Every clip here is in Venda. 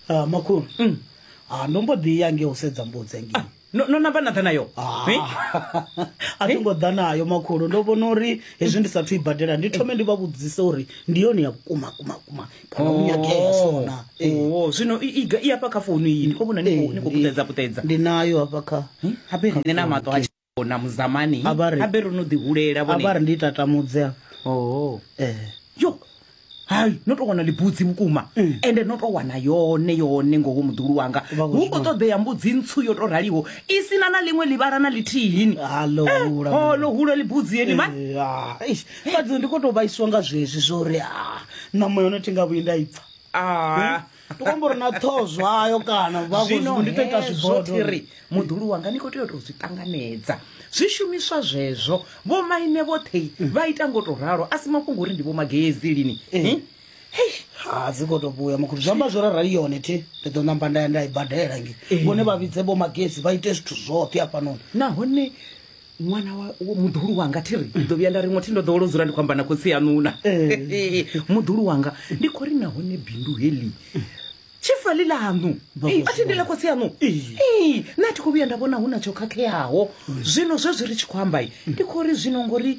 Ah, makhulu Ah, ndo mbo ḓi ya nge u sedza mbudzi engei no no namba na ḓa nayo Hi? a thi ngo ḓa nayo makhulu ndo vhona uri hezwi ndi sathu i badela ndi thome ndi vha vhudzise uri ndi yone ya vhukuma kuma kuma kana u nyagea sona Eh, Oh, zwino i- iga- i hafha kha founu iyi ndi khou vhona ni khou- ni khou puṱedza puṱedza ndi nayo hafha kha habe nṋe na maṱo a na muzamani A vha ri- habe ro no ḓi hulela a vha vhone ri ndi tatamudze a oho eh yo hai no tou wana libudzi vhukuma ende no tou wana yone yone ngoho muḓulu wanga Mm. Vha khou hu khou zwi ṱoḓea mbudzi ntswu yo tou raliho i si na na ḽiṅwe ḽivhala na ḽithihini Halo, hula. holo hula libudzi yeni mani Eh, ah, eish, fhadzi ndi kho to vhaisiwa nga zwezwi zwo uri ah, ṋama yone thi nga vhuyi nda i pfa Ah, tokombori na ṱhoho zwayo kana vhazwino ndi to ita zwibodothiri muḓulu wanga ni khou tea u tou zwi ṱanganedza zwishumiswa zwezwo vho maine vhoṱhe vha ita ngo to ralo a si mafhungo uri ndi vho magezi lini eh. eh? ha dzi koto vhuya makhulu zwi amba zwo rarali yone thi ndi ḓo namba nda ya nda i badela nge eh. vhone vha vhidze vho magezi vha ite zwithu zwoṱhe afhanoni nahone ṅwana muḓulu wanga thi ri ndi ḓo vhuya nda ri ngothi ndo ḓowolo dzula ndi khou amba na khotsi yanuna eh. muḓulu wanga ndi khou ri nahone bindu heḽi tshifali ḽaṋu a thi ndila khotsi yaṋu na thi khou vhuya nda vhona hu na tsho khakheaho zwino zwezwi ri tshi khou amba ndi khou ri zwino ngori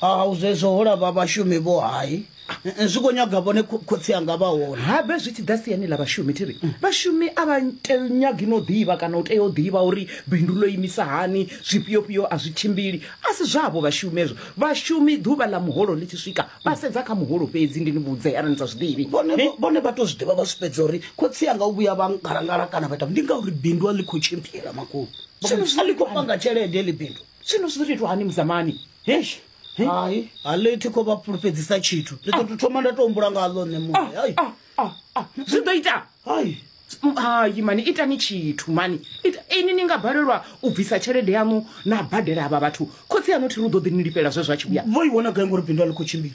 hau zwezwo ho lava vhashumi vho hai zwi khou nyaga vhone kho- khotsi anga vha hone habe zwi tshi ḓa siani ḽa vhashumi thi ri vhashumi a vha te- nyagi no ḓivha kana u tea u ḓivha uri bindu ḽo imisa hani zwifhiofhio a zwi tshimbili a si zwavho vhashumi ezwo vhashumi ḓuvha ḽa muholo ḽi tshi swika vha sedza kha muholo fhedzi ndi ni vhudze arali ni sa zwi ḓivhi vhone Ni- vhone vha to zwi ḓivha vha zwi fhedza uri khotsi anga u vhuya vha ngalangala kana vha ita ndi ngauri bindu a ḽi khou tshimbila makulu Zwino zwi a ḽi khou panga tshelede ḽi bindu zwino zwi ḓo tou itwa hani muzamani hesh He? hai a ḽi thi khou vha fhulufhedzisa tshithu ndi ḓo tou thoma nda tou humbula nga ḽo nṋe muṋe hai Ah, ah, ah. zwi ḓo ita hai Mm, hai mani itani tshithu mani Ita- ini ni nga balelwa u bvisa tshelede yaṋu na badela avha vhathu khotsi yaṋu thi ri u ḓo ḓi ni lifhela zwe zwa tshi vhuya vho i wana gai ngori bindu a ḽi khou tshimbila